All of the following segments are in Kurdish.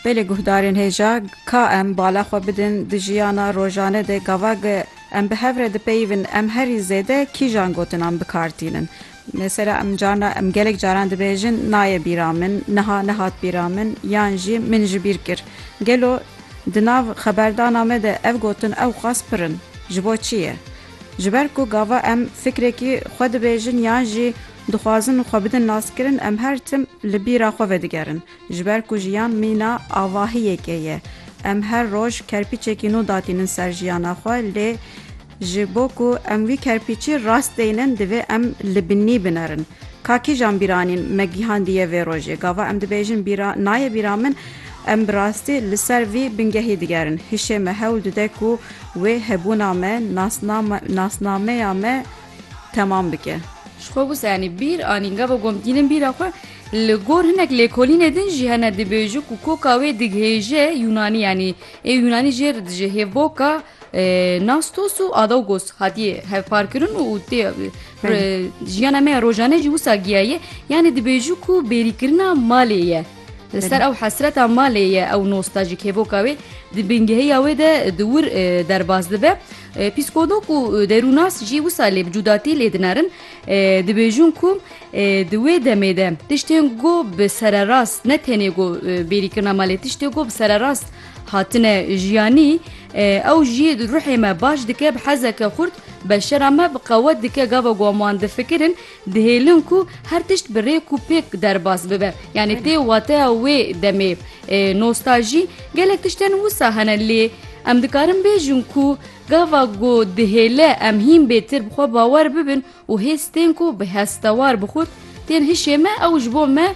Belê guhdarên hêja ka em bala xwe bidin di jiyana rojane de gavak em bi hev re dipeyivin em herî zêde kîjan gotinan bikar tînin. Mesela em carna em gelek caran dibêjin nayê bîra min, niha nehat bîra min yan jî min ji bîr kir. Gelo di nav xeberdana me de ev gotin ewqas pir in. Ji bo çi ye? Ji ber ku gava em fikrêkî xwe dibêjin yan jî Dixwazin xwe bidin naskirin em her tim li bîra xwe vedigerin. Ji ber ku jiyan mîna avahiyekê ye. Em her roj kerpîçekî nû datînin ser jiyana xwe lê ji bo ku em wî kerpîçî rast deynin divê em li binî binerin. Ka kîjan bîranîn me gihandiye vê rojê? Gava em dibêjin bîra nayê bîra min em bi rastî li ser vî bingehî digerin. Hişê me hewl dide ku wê hebûna me, nasnameya me temam bike. Ji xwe wisa yanî bîr anîn gava ku em tînin bîra xwe, li gor hinek lêkolînê din jî hene dibêjin ku koka wê digihêje Yûnanî yanî ê Yûnanî jê re dijî hêvboka Nastos û Adaugos hatiye hevparkirin û tê jiyana me ya rojane jî wisa giyaye yanî dibêjin ku bêrîkirina malê ye. Li ser ew hesreta malê ye ew nostajîk hêvoka wê di bingehiya wê de di wir derbas dibe Psîkolog û derûnas jî wisa lê bi cudatî lê dinerin, dibêjin ku di wê demê de tiştên ku bi sererast ne tenê ku bêrî kirina me lê tiştê ku bi sererast hatine jiyanî ew jî ruhê me baş dike, bi hezeke xurt beşera me bi qewet dike gava ku em wan difikirin, Dihêlin ku her tişt bi rêk û pêk derbas bibe. Yanî tê wateya wê demê nostajî gelek tiştên wisa hene lê em dikarin bêjin ku gava ku dihêle em hîn bêtir bi xwe bawer bibin û hêz tên ku bi hestewar bi xurt tên hişê me ew ji bo me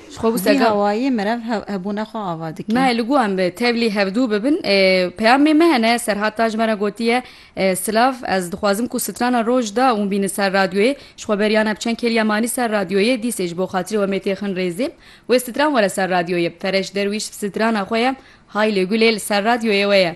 Ji xwe bû sega. Vî hawayê merev hebûna xwe ava dike. Nayê li ku em bi tevlî hevdû bibin. Peyamê me hene Serhat Tac me re gotiye Silav ez dixwazim ku strana roj da û bîni ser radyoyê. Ji xwe beriya ne bi çend kêliya manî ser radyoyê. Dîsê ji bo xatirê we mêtê xin rêzê. Wê stran were ser radyoyê. Fereş Derwîş strana xwe ye Haylê Gulê li ser radyoyê we ye.